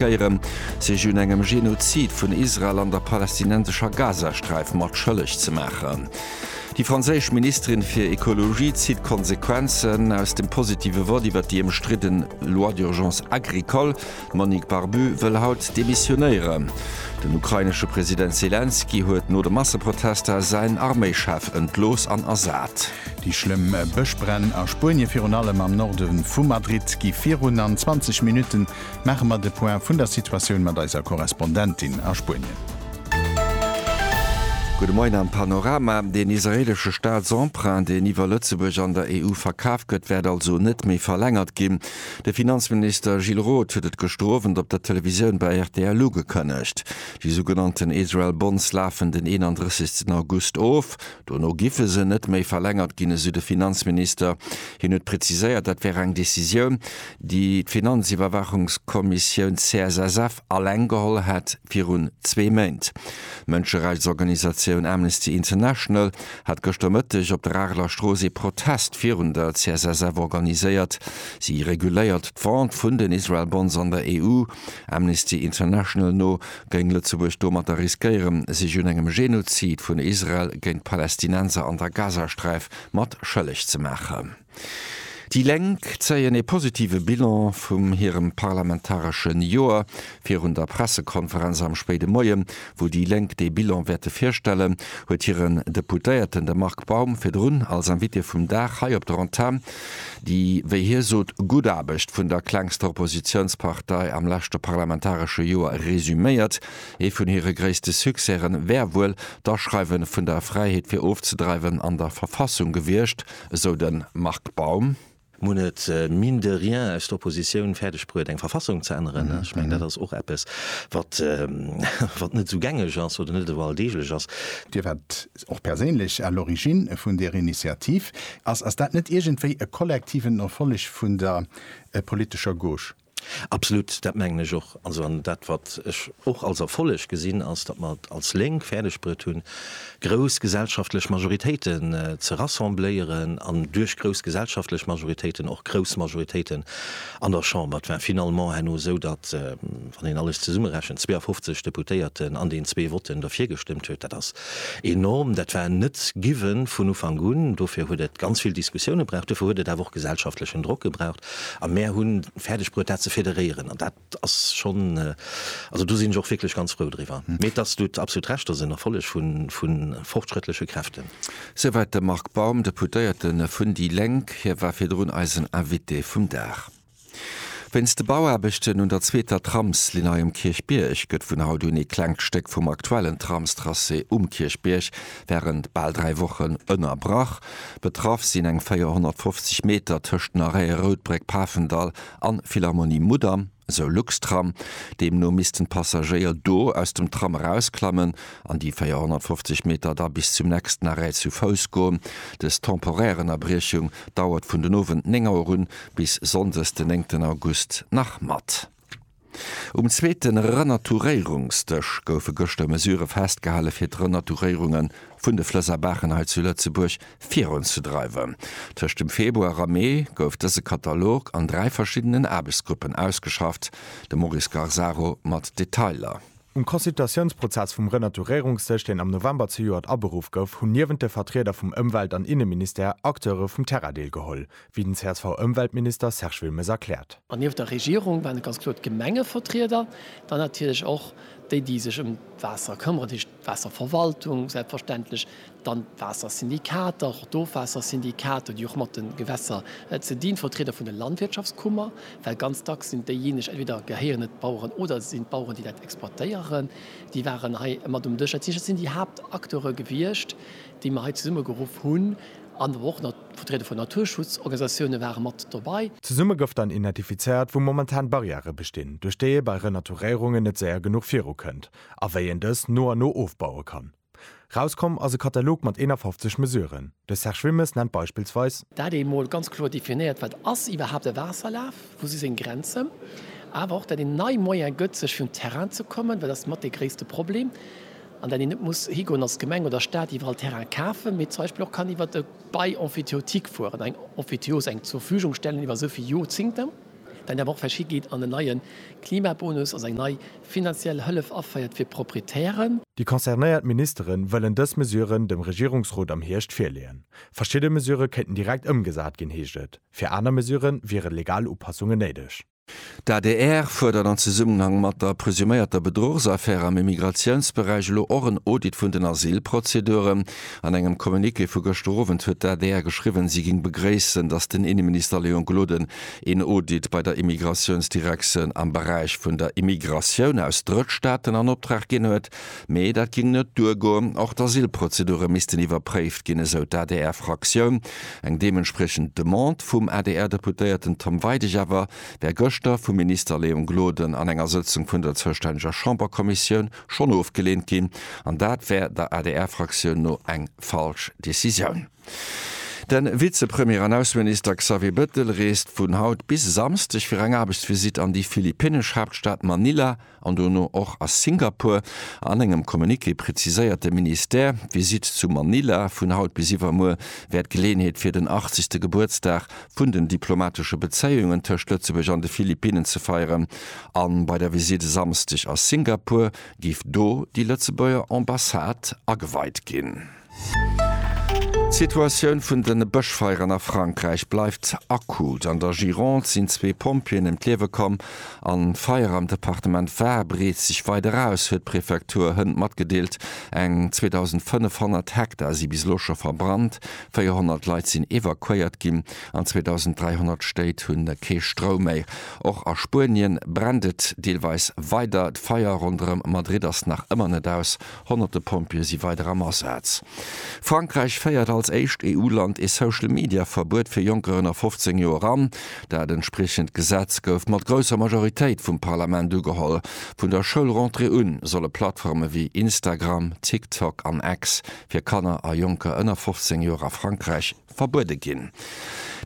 Geierem sech un engem Genozid vun Israel an der palästinensescher Gazasträif mat schëlleg ze maachen. Déi franséisch Ministerin fir Ekologie zitt Konsequenzen aus dem positive Vott iwwer déi ëmstridden Loi d'urgence agricole. D'Monique Barbu wëll haut demissionéieren. Den ukrainesche President Selenskyj huet no de Masseprotester säin Arméichef entlooss an ersat. Déi schlëmm Bëschbränn a Spuenie, virun allem am Norde vu Madrid, gi virun an 20 Minutten maache mer de Point vun der Situatioun mat eiser Korrespondentin a Spuenien. Gudde Moien am Panorama. Deen israeelesche Staatsemprunt, deen iwwer Lëtzebuerg an der EU verkaf gëtt, wäert also net méi verlängert ginn. De Finanzminister Gilles Roth huet et gëschter Owend op der Televisioun bei rtl ugekënnegt. Déi sougenannten Israel Bonds lafen den 31 August of. Dono giffe se net méi verlängert ginn, esou de Finanzminister. Hien huet preziséiert, dat wär eng Decisioun, déi d'Finanziwwerwaachungskommissioun CSSF alleng geholl hat, virun zwee Méint. D'Mënscherechtsorganisatioun Amnesty International hat gëschter Mëtteg op der Areler Strooss ee Protest virun der CSSF organiséiert. Si reguléiert d'Vente vun den Israel Bonds an der EU. Amnesty International no géing Lëtzebuerg domatter riskéieren, sech un engem Genozid vun Israel géint d'Palästinenser an der Gazasträif mat schëlleg ze maachen. Déi Lénk zéien ee positive Bilan vum hirem parlamentaresche Joer. Virun der Pressekonferenz am spéide Moie, wou déi Lénk dee Bilan wäerte virstellen, huet hiren Deputéierten, de Marc Baum, virdrun als Invité vum Dag hei op der Antenn déi, wéi hie sot, gutt Aarbecht vun der klengster Oppositiounspartei am leschte parlamentaresche Joer resüméiert. Ee vun hire gréisste Succèsen wär wuel d'Aschreiwe vun der Fräiheet fir ofzedreiwen an der Verfassung gewiescht. esou de Marc Baum. Mir hunn et, mine de rien, aus der Oppositioun fäerdeg bruet, eng Verfassung ze änneren. Ech mengen, dat ass och eppes, wat net esou gängeg ass oder net esou alldeeglech ass. Dir waart och perséinlech à l'origine vun där Initiativ. Ass dat net iergendwéi e kollektiven Erfolleg vun der politescher Gauche? Absolut, dat mengen ech och. Also, an dat wat ech och als Erfolleg gesinn, ass, datt mer et als Lénk fäerdeg bruet hunn, grouss gesellschaftlech Majoritéiten ze rassembléieren an duerch grouss gesellschaftlech Majoritéiten och grouss Majoritéiten an der Chamber. Et war finalement herno esou, datt, wann een alles zesummerechent, 52 Deputéierten an den zwee Votten derfir gestëmmt huet. Dat ass enorm. Dat war net given vun Ufank un. Dofir huet et ganz vill Diskussioune braucht. Dofir huet et awer och gesellschaftlechen Drock gebraucht. A mär hunn fäerdeg bruet dat ze federéieren an dat ass schonn, also do sinn ech och wierklech ganz frou driwwer. Mee et ass, du hutt absolut Recht, et ass en Erfolleg vu fortschrëttleche Kräften. Souwäit de Marc Baum, Deputéierte vun déi Lénk. Hie war virdrun eisen Invité vum Dag. Wéinst de Bauaarbechten un der zweeter Tramslinn hei um Kierchbierg gëtt vun haut un ee klengt Stéck vum aktuellen Tramstracé um Kierchbierg wärend bal dräi Wochen ënnerbrach. Betraff sinn eng 450 Meter tëscht den Arrête Roudbréck, Pafendall an Philharmonie Mudam, esou Luxtram. Deemno missten d'Passagéier do aus dem Tram erausklammen an déi 450 Meter da bis zum nächsten Arrêt zu Fouss goen. Des temporär Ënnerbriechung dauert vun den Owend 9 Auer un bis Sonndes den 9 August nach mat. Um zweete Renaturéierungsdësch goufe gëschter Mesurë festgehale fir d'Renaturéierunge vun de Flëss a Baachen hei zu Lëtzebuerg virunzedreiwen. Tëscht dem Februar a Mee gouf dëse Katalog an dräi verschiddenen Aarbechtsgruppen ausgeschafft, de Maurice Garzaro mat Detailer. Um Consultatiounsprozess vum Renaturéierungsdësch, deen am November zejoert aberuff gouf, hunn niewent de Vertrieder vum Ëmwelt an Inneministère Acteure vum Terrain deelgeholl, wéi den CSV-Ëmweltminister Serge Wilmes erkläert. An nieft der Regierung waren et ganz kloer d'Gemengevertrieder, dann natierlech och déi, déi sech ëm d'Waasser këmmeren, dat heescht d'Waasserverwaltung, selbstverständlech dann d'Waassersyndikater, och d'Ofwaassersyndikater, déi och mat de Gewässer ze dinn, d'Vertrieder vun de Landwirtschaftskummer, well ganz dacks sinn déijeeneg, entweder gehéieren et d'Baueren oder et sinn d'Baueren, déi dat exploitéieren, déi waren hei mat um Dësch. Dat heescht, dat sinn déi Haaptacteure gewiescht, déi mer hei zesummegeruff hunn, an awer och nach d'Vertrieder vun Naturschutzorganisatioune ware mat dobäi. Zesumme gouf dann identifizéiert, wou momentan Barrièrë bestinn, duerch déi ee bei Renaturéierungen net séier genuch virukënnt a wéi een dës no an no ofbaue kann. Rauskomm ass e Katalog mat 51 Mesuren. De Serge Wilmes nennt beispillsweis. Dat ee mol ganz kloer definéiert, wat ass iwwerhaapt e Waasserlaf, wou si seng Grenzen, awer och dat een nei Moyen gëtt, sech fir un d'Terrainen ze kommen, well dat ass mat dee gréisste Problem, an dat een net muss higoen als Gemeng oder Staat iwwerall Terraine kafen, mee zum Beispill och kann iwwer e Bail emphytéotique fueren, eng Emphytéose, eng Zurverfügung stellen iwwer esou vill Jorzingten. Well der Woch verschi geet an en neie Klimabonus ass eng nei finanziell Hëllef aféiert fir Proprietären. Déi concernéiert Ministere wëllen dës Mesuren dem Regierungsrot am Hierscht virleeën. Verschidde Mesurë kéinten direkt ëmgesat ginn, heescht et. Fir aner Mesurë wiere legal Upassungen néideg. D'adr fuerdert an Zesummenhang mat der presuméierter Bedruchsaffär am Immigratiounsberäich elo och en Audit vun den Asylprozeduren. An engem Communiqué vu gëschter Owend huet d'ADR geschriwwen, si géing begréissen, datt den Inneminister Léon Gloden een Audit bei der Immigratiounsdirektioun am Beräich vun der Immigratioun aus Drëttstaaten an Optrag ginn huet, mee dat géing net duergoen. Och d'Asylprozedure missten iwwerpréift ginn, esou d'ADR-Fraktioun. Eng deementspriechend Demande vum ADR-Deputéierten Tom Weidig awer wär gëschter vum Minister Léon Gloden an enger Sëtzung vun der zoustänneger Chamberkommissioun schonn ofgeleent ginn, an dat wär der ADR-Fraktioun no eng falsch Decisioun. De Vizepremier an Ausseminister Xavier Bettel reest vun haut bis e Samsdeg fir eng Aarbechtsvisitt an déi philippinnesch Haaptstad Manila an dono och a Singapur. An engem Communiqué preziséiert de Ministère, d'Visitt zu Manila vun haut bis iwwermuer wär d'Geleeënheet fir den 80. Gebuertsdag vun den diplomatesche Bezéiungen tëscht Lëtzebuerg an de Philippinnen ze feieren a bei der Visitt e Samsdeg a Singapur géif do déi Lëtzebuerger Ambassade ageweit ginn. D'Situatioun vun de Bëschfeieren a Frankräich bleift akut. An der Gironde sinn zwee Pompjeeën ëm d'Liewe komm a Feier am Departement Var breet sech weider aus, huet d'Prefektur Hënt matgedeelt. Eng 2.500 Hektar si bis elo scho verbrannt, 400 Leit sinn evakuéiert ginn an 2.300 Stéit hu kee Stroum méi. Och a Spuenien brennt et deelweis weider. D'Feier ronderëm Madrid ass nach ëmmer net aus. Honnerte Pompjeeë si weider am Asaz. Frankräich féiert als éischt EU-Land ee Social-Media-Verbuet fir Jonker ënner 15 Joer an. Dat entspriechend Gesetz gouf mat grousser Majoritéit vum Parlament ugeholl. Vun der Schoulrentrée un solle Plattforme wéi Instagram, TikTok an X fir Kanner a Jonker ënner 15 Joer a Frankräich verbuede ginn.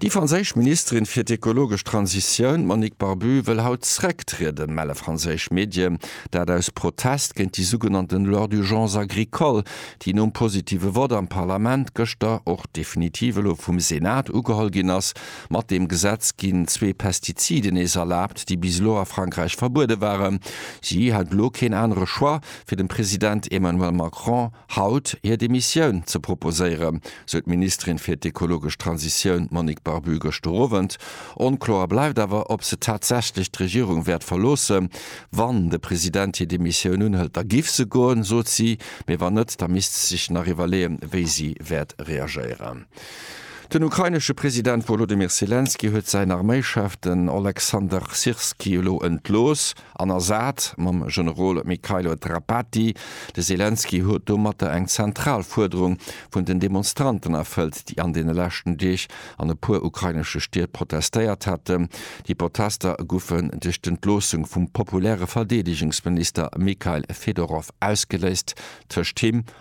Déi franséisch Ministerin fir d'ekologesch Transitioun, d'Monique Barbue, wëll haut zrécktrieden, melle franséisch Medien. Dat aus Protest géint déi sougenannten Loi d'urgence agricole, déi nom positive Vott am Parlament gëschter och definitiv elo vum Senat ugeholl ginn ass. Mat deem Gesetz ginn zwee Pestiziden nees erlaabt, déi bis elo a Frankräich verbuede waren. Si hat elo keen anere Choix, fir dem President Emmanuel Macron, haut hir Demissioun ze proposéieren, sou d'Ministerin fir d'ekologesch Transitioun Monique Barbu gëschter Owend. Onkloer bleift awer, ob se tatsächlech d'Regierung wäert verloossen. Wann de President hir Demissioun unhëlt, da giff se goen, sot si. Mee wann net, da misst se sech nach iwwerleeën, wéi si wäert reagéieren. Den ukrainesche President Wolodymyr Selenskyj huet säin Arméischef, den Oleksandr Syrskyi, elo entlooss. An Assad mam Generol Mykhailo Drapati, De Selenskyj huet domatter eng zentral Fuerderung vun den Demonstranten erfëllt, déi an deene leschten Deeg an e puer ukrainesche Stied protestéiert haten. Déi Protester goufen duerch d'Entloossung vum populäre Verdeedegungsminister Mikhail Fedorov ausgeléist, tëscht him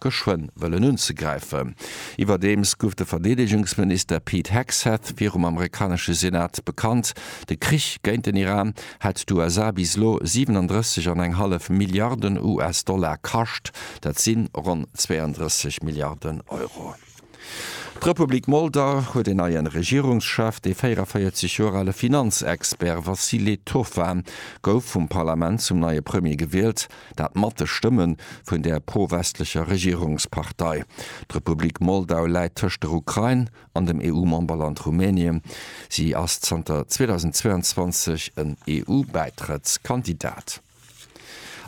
geschwënn wëllen unzegräifen. Iwwerdeems guff de Verdeedegungsminister Pete Hegseth virum amerikanesche Senat bekannt, de Krich géint den Iran hätt d'USA bis elo 37 an eng hallef Milliarden US-Dollar kascht, dat si ronn 32 Milliarden Euro. D'Republik Molda huet een neie Regierungschef. Dee 44 Joer ale Finanzexpert Vasile Toffa gouf vum Parlament zum neie Premier gewielt, dat mat de Stëmme vun der pro-westlecher Regierungspartei. D'Republik Moldau läit tëscht der Ukrain an dem EU-Memberland Rumänien. Si ass zanter 2022 en EU-Bäitrëttskandidat.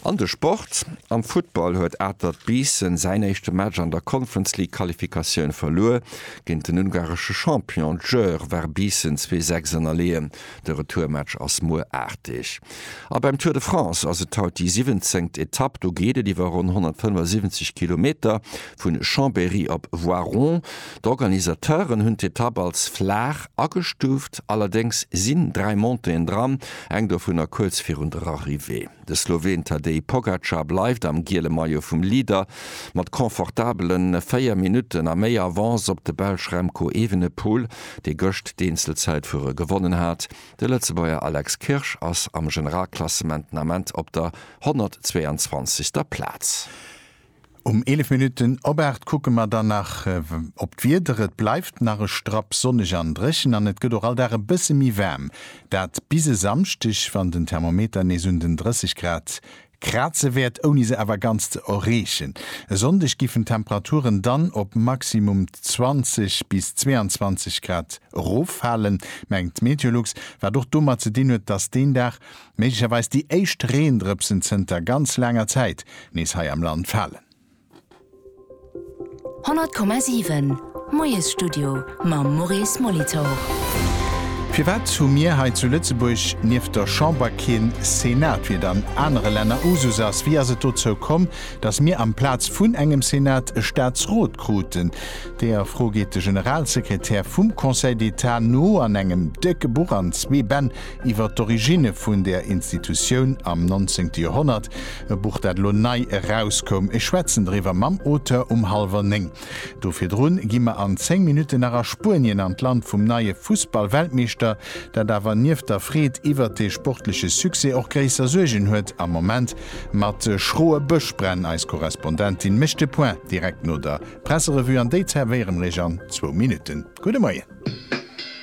An de Sport, Am Futtball huet Atert Biissen säin éischte Match an der Conference League Qualifikatioun verluer. Géint den ungaresche Champion Győr war Biissen zwee Sechs ënnerleeën. De Retourmatch ass muer aarteg. A beim Tour de France ass et haut déi siwwenzéngt Etapp. Do geet et iwwer ronn 175 Kilometer vun Chambéry op Voiron. D'Organisateuren hunn d'Etapp als flaach agestuuft, allerdéngs sinn dräi Montéeën dran, eng dovunner kuerz virun der Arrivée. De Sloween Tadej Pogacar bleift am giele Maillot vum Leader mat confortabele véier Minutten a méi Avance op de Belsch Remco Evenepoel, dee gëscht d'Eenzelzäitfuere gewonnen hat. De Lëtzebuerger Alex Kirsch ass am Generalklassement den Ament op der 122. Plaz. Um 11 Minutten op 8 kucke mer dann nach op d'Wieder. Et bleift nach e Strapp sonneg an dréchen an et gëtt och all Dag e bësse méi waarm. Dat bis e Samschdeg, wann den Thermometer nees un den 30 Grad kraze wäert, ouni se awer ganz ze erreechen. E Sonndeg giffen d'Temperaturen dann op maximum 20 bis 22 Grad eroffalen, mengt Meteolux, wat och domat ze dinn huet, dass deen Dag méiglecherweis déi éischt Reendrëpsen zënter ganz laanger Zäit nees hei am Land falen. 100,7 Moiesstudio mam Maurice Molitor. Firwat hu mir hei zu Lëtzebuerg nieft der Chamber keen Senat, wéi et an anere Länner Usus ass? Wéi ass et dozou komm, datt mir amplaz vun engem Senat e Staatsrot kruten? Deeër Fro geet de Generalsekretär vum Conseil d'État no an engem décke Buch an zwee Bänn, iwwer d'Originne vun där Institutioun am nonzéngte Joerhonnert, e Buch, dat elo nei erauskoum. Ech schwätzen driwwer mam Auteur um hallwer néng. Do virdrun gi mer an zéng Minutten nach a Spuenien an d'Land vum neie Fussballweltmeeschter, dat awer nieft der Freed iwwert dee sportleche Succès och gréisser Suergen huet am Moment mat schroe Bëschbränn. Eis Korrespondentin mécht de Point direkt no der Presserevue an déi zerwéiere mer Iech an zwou Minutten. Gudde Moien.